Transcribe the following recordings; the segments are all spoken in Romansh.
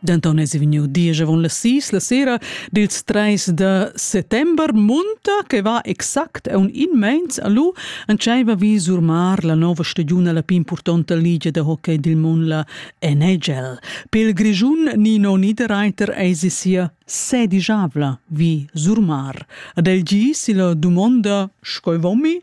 Denton es vegniu diesch avon las sis la sera dils treis da settember munta che va exact aun immens a lu entscheiva vi surmar la nova stagiun alla pin purtonta ligia da hockey dil mon la NHL. Pel Grischun Nino Niederreiter eis sia sedigiavla vi surmar. Ad el gis la dumonda schoi vomi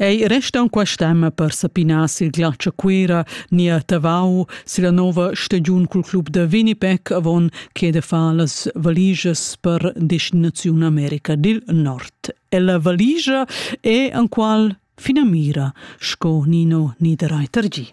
Ei resta aunc stemma per sapinar sil glatsch a Cuera ni a Tavau silla nova stagiun cul club da Winnipeg avon che de far las valigias per destinaziun America dil Nord. Ella valigia è enqual finamira, sco Nino Niederreiter gi.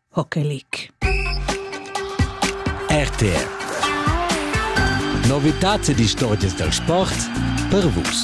Pochelic. RTR. Novitats ed istorgias dal sport per Vus.